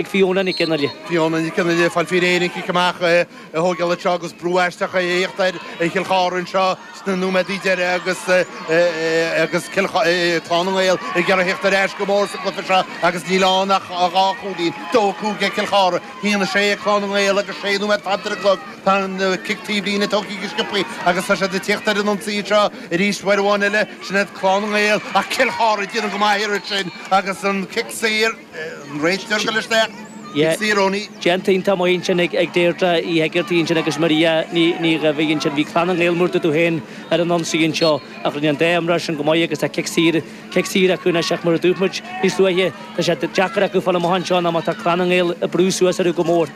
ag Fiona Nic an Aille. Fiona Nic an Aille ag fáil faoi réir an cic amach a thóigeáil anseo agus brú aisteach ag tíocht ar Chill Charthaigh anseo sna nóiméadaí deiridh agus agus Cill Clann na nGael ag iarraidh a thíocht ar ais go mór sa gcluiche seo agus níl ann ach dhá chúilín, dó a cúig ag Cill Charthaigh, haon a sé ag Clann na nGael agus sé nóiméad fanta ar an gclog. Tá an cic taobhlíne tugtha go sciobtha agus tá siad ag tíocht ar an ionsaí anseo arís uair amháin eile, sin iad Clann na nGael ach Cill Charthaigh ag déanamh go maith an iarraidh sin agus an cic saor, Déanta iontach maith ansin ag Deirdre Hegarty ansin agus Maria Ní Dhaimhín ansin. Bhí Clann na nGael mar a dúirt tú féin ar an ionsaí anseo ach rinne an dá imreoir sin go maith agus tá cic saor, cic saor acu anois ach mar a dúirt muid níos luaithe, tá sé deacair acu fáil amach anseo ná má tá Clann na nGael ag brú suas orthu go mór.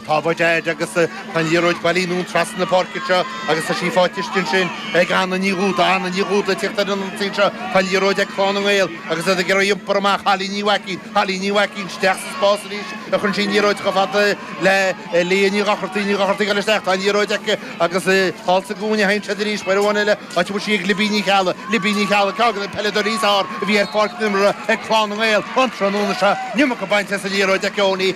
Tá Bud Aid agus tá an liathróid bailithe anonn trasna na páirce seo agus tá sí faighte istigh ansin ag Anna Ní Dhúda. Anna Ní Dhúda ag teacht ar an ionsaí anseo. Tá an liathróid ag Clann na nGael agus iad ag iarraidh iompar amach. Holly Ní Mhaicín. Holly Ní Mhaicín isteach sa spás arís cuireann sí an liathróid chomh fada le Leah Ní Dhochartaigh. Ní Dhochartaigh eile isteach. Tá an liathróid aici agus thall sa gcúinne a théann siad arís uair amháin eile áit a bhfuil sí ag Libby Ní Cheallaigh. Libby Ní Cheallaigh ceann de na peileadóirí is fearr a bhí ar pháirc na himeartha ag Clann na nGael an trathnóna seo. Níl muca bainte as an liathróid ag Eoin Ní.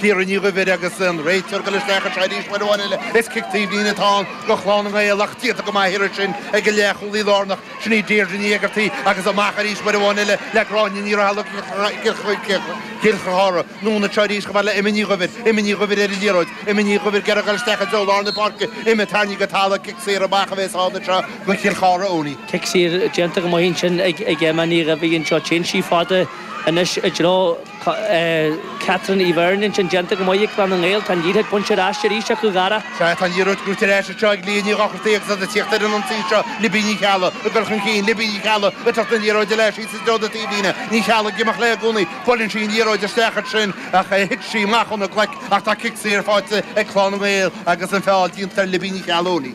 Ciara Ní Dhuibhir agus an réiteoir ag dul isteach anseo arís uair amháin eile. Is cic taobhlíne atá ann do Chlann na nGael ach déanta go maith an iarraidh sin ag an leathchúlaí lárnach, sin í Deirdre Ní Éigeartaí agus amach arís uair amháin eile le Gráinne Ní Raghallaigh ag Cill Charthaigh. Anonn anseo arís chomh fada le Emma Ní Dhuibhir. Emma Ní Dhuibhir ar an liathróid. Emma Ní Dhuibhir ag iarraidh a dhul isteach i dtreo lár na páirce. Emma tarraingthe go talamh, cic saor amach a bhéas ann anseo do Chill Charthaigh Eoiní. Cic saor déanta go maith ansin ag Emma Ní Dhuibhir anseo. Téann sí fada anois i dtreo. Tá Catherine Ní Bheirn ansin déanta go maith ag Clann na nGael. Tá an liathróid bainte ar ais arís acu, a Dhara. Sea, tá an liathróid buaite ar ais anseo ag Leah Ní Dhochartaigh agus iad ag tíocht ar an ionsaí seo. Libby Ní Cheallaigh ag dul chun cinn. Libby Ní Cheallaigh ag tabhairt na liathróide léi síos i dtreo na taobhlíne. Ní Cheallaigh ag imeacht léi i gcónaí. Buaileann sí an liathróid isteach ansin ach thit sí amach óna glaic ach tá cic saor faighte ag Clann na nGael agus an feall déanta ar Libby Ní Cheallaigh.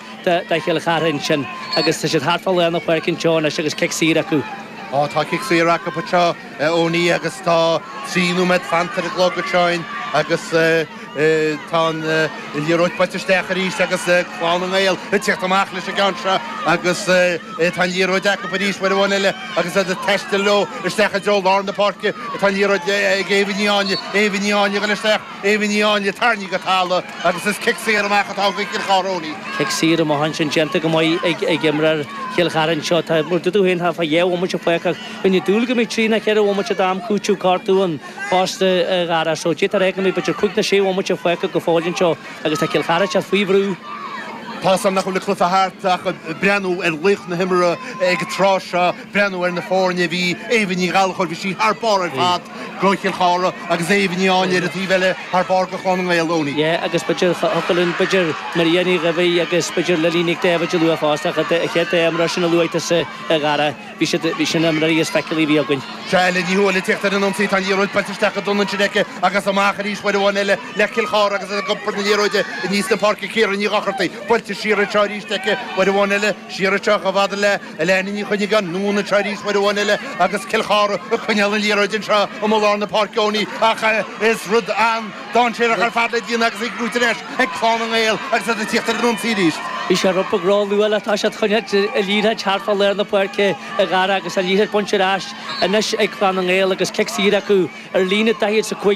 do Chill Chartha ansin agus tá siad thart fá lár na páirce anseo anois agus cic saor acu. Tá cic saor acu anseo Eoiní agus tá trí nóiméad fanta ar an gclog anseo agus tá an liathróid buailte isteach arís agus Clann na nGael ag tíocht amach leis an gceann seo agus tá an liathróid acu arís uair amháin eile agus iad ag taisteal leo isteach i dtreo lár na páirce. Tá an liathróid ag Aoibhinn Ní Áinle, Aoibhinn Ní Áinle ag dul isteach. Aoibhinn Ní Áinle tarraingthe go talamh agus is cic saor amach atá ag Cill Charthaigh Eoiní. Cic saor amach ansin déanta go maith ag imreoir Chill Chartha anseo. Tá mar a dúirt tú féin thart fá dhá bhomaite fágtha ach bheinn ag dúil go mbeadh trí ná ceithre bhomaite d'am cúitimh gortaithe ann fosta a Dhara. So d'fhéadfadh a fheicim b'fhéidir cúig ná sé bhomaite fágtha go fóill anseo agus tá Cill Charthaigh faoi bhrú. Tá a fhios agam nach bhfuil an cluiche thart ach ag breathnú ar laoch na himeartha ag an tráth seo. breathnú ar na foirne bhí Éabha Ní Ghallachóir, bhí sí thar barr ar fad go Cill Chartha agus Éabha Ní Áinle ar an taobh eile thar barr go Clann na nGael, Eoiní. Yeah agus b'fhéidir thiocfadh linn b'fhéidir Maria Ní Dhaimhín agus b'fhéidir Lily Nic Daibhéid a lua fosta ach a chéad dá imreoir sin a luaigh tusa a Dhara, bhí siad, bhí sin na himreoirí is feiceálaí a bhí againn. Seo í Ní Thuathail ag teacht ar an ionsaí, tá an liathróid buailte isteach go dona ansin aici agus amach arís uair amháin eile le Cill Chartha agus ag iompar na liathróide aníos na páirce Ciara Ní Dhochartaigh, buailte siar anseo arís aici uair amháin eile, siar anseo chomh fada le. Elaine Ní Choinnigh anonn anseo arís uair amháin eile agus Cill Chartha ag coinneáil an liathróid anseo amuigh lár na páirce Eoin ach is rud an-dáinséarach ar fad le déanamh agus í á brú anois ag Clann na nGael agus iad ag tíocht ar an ionsaí arís. Bhí sé i bhfad róluath le toiseacht ag coinneáil na liathróide thart fá lár na páirce a Dhara agus an liathróid bainte ar ais anois ag Clann na nGael agus cic saor acu ar líne 45.